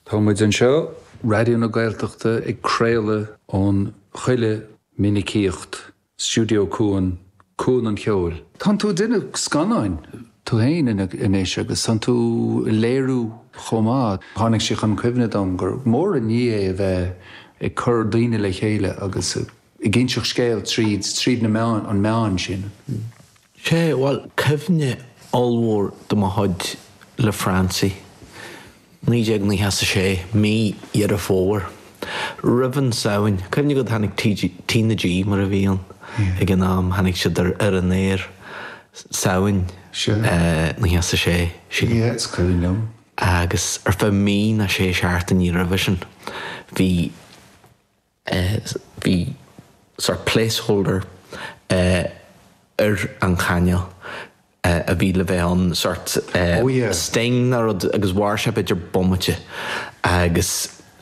Tá muid anseo, Raidió na Gaeltachta, ag craoladh ón chuile mhinicíocht, Stiúideo Cuan, Cuan an Cheoil. Tánn tú duine scannáin tú fhéin anois agus tánn tú ag léiriú chomh maith. Tháinig sé chun cuimhne dom gur mór an ní é a bheith ag cur daoine le chéile agus ag inseacht scéil tríd tríd na meáin, an meán sin. Sé, bhuel, cuimhne ollmhór de mo chuid le Francie, naoi déag naocha is a sé, mí Dheireadh Fómhair, roimh Shamhain. Cuimhne agat, tháinig T na G, mar a bhí ann ag an am, tháinig siad ar ar an aer Samhain naocha is a sé, sílim. Yeah, is cuimhin liom. Agus ar feadh mí nó sé seachtainí roimhe sin, bhí. eh bhí sort of placeholder eh ar an chainéal eh a bhí le bheith ann sort eh Oh yeah. sting nó rud agus mhair sé b'fhéidir bomaite agus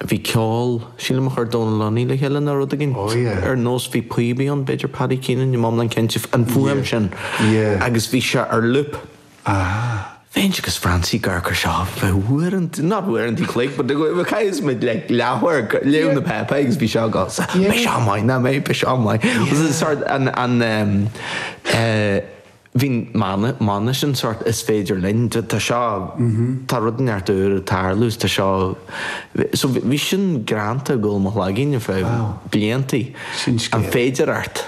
bhí ceol sílim a chuir Dónal Lunny le chéile nó rud éigint Oh yeah. ar nós bhí píobaí ann b'fhéidir Paddy Keenan ní bheinn iomlán cinnte an fuaim sin Yeah. agus bhí sé ar loop Ah. Bhínn agus Francie ag cur seo fá uaireanta, not uaireanta chloig, but a chaithfeas muid le leabhair, léamh na bpáipéar agus bhí seo go, so, b'é seo mine, ná mé, b'é seo mine. Was it a sort, an, an, ehm, eh, bhí mana, mana sin sort is féidir linn, tá, tá seo, tá rud ann ar tí tarlú is tá seo, so bhí, bhí sin greanta i gcúl mo chloiginne fiche bliain. Sin scéal. An féidearthacht.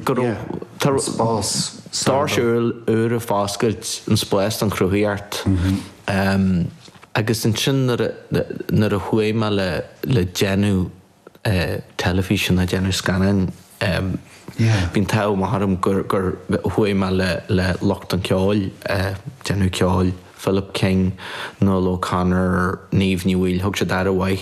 Go raibh, tá, An spás. Doirse úra ag foscailt an spás don chruthaíocht. Agus ansin nuair a chuaigh mé le déanamh teilifíse nó déanamh scannáin bhí an t-ádh maith orm gur chuaigh mé le lucht an cheoil, déanamh ceoil, Philip King, Nuala O'Connor, Niamh Ní Bhaoill, thug siad aire mhaith